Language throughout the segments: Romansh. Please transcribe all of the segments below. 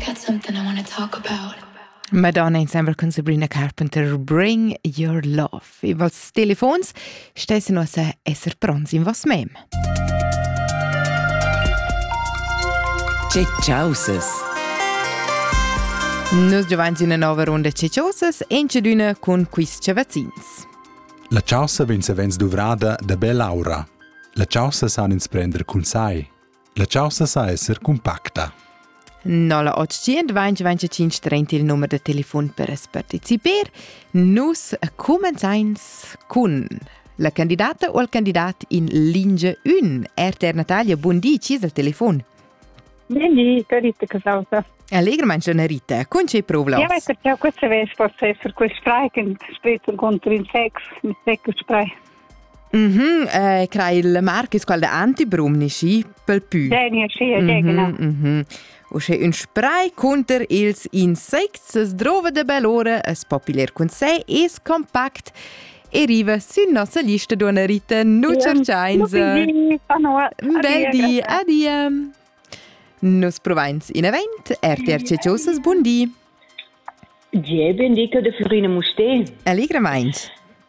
That's something I want to talk about. Madonna insembel cun Sabrina Carpenter Bring Your Love. I vals telefons stessi nossa esser pronts in vos mem. Ceciauses. Nus giovans in una nova runda Ceciauses encedüna cun quiz cavazzins. La chaussa vegn savens duvrada da bella aura. La chaussa san ins prender cun sai. La caussa sa esser cumpacta. 0825 il numero de telefon per es participar. Nus comenzains cun la candidata o il candidat in lingia 1. RTR Natalia, buon di, ci al telefon. Buondì, carita che causa. Allegramente schon, Rita. Con c'è problemi? Ja, weiter, ja, questo vens forse essere quel streichen, später contra in Sex, mit Sex sprei. Mm -hmm. eh, crai il Marcus qual da antibrumni schi pel pü. Degna schi e degna. Mm -hmm. U sche ün spray cunter ils insects es drova de belore, es populer cun sé, es compact e riva sün nossa lista d'una Rita Nucerciains. Bedi, adia! Nus provains in event, RTR Ceciosas, buon di! Gie, bendica de Florina Musté. Allegramaints!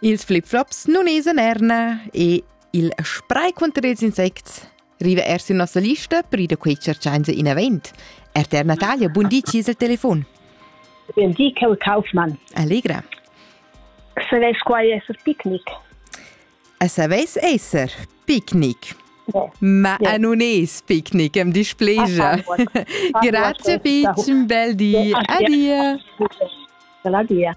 Ils flip-flops nun esan erna e il spray cunter ils insects riva er sin nossa lista per ir a quei cerciainsa inavent. RTR Natalia, bun di, ci il telefon. Bun di, Kel Kaufmann. Allegra. Saveis quai esser picnic? A saveis esser picnic? Ma yeah. non es picnic, am displegia. Grazie, Pitch, un bel di. Adia. Bella dia.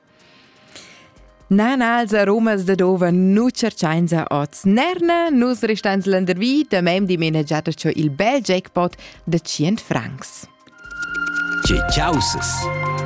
Na, na, els aromas da dova nu tscherchainsa hoz nerna, nus restains landervi, da mem dimena giata cho il bel jackpot da tschient francs. Tge chausas!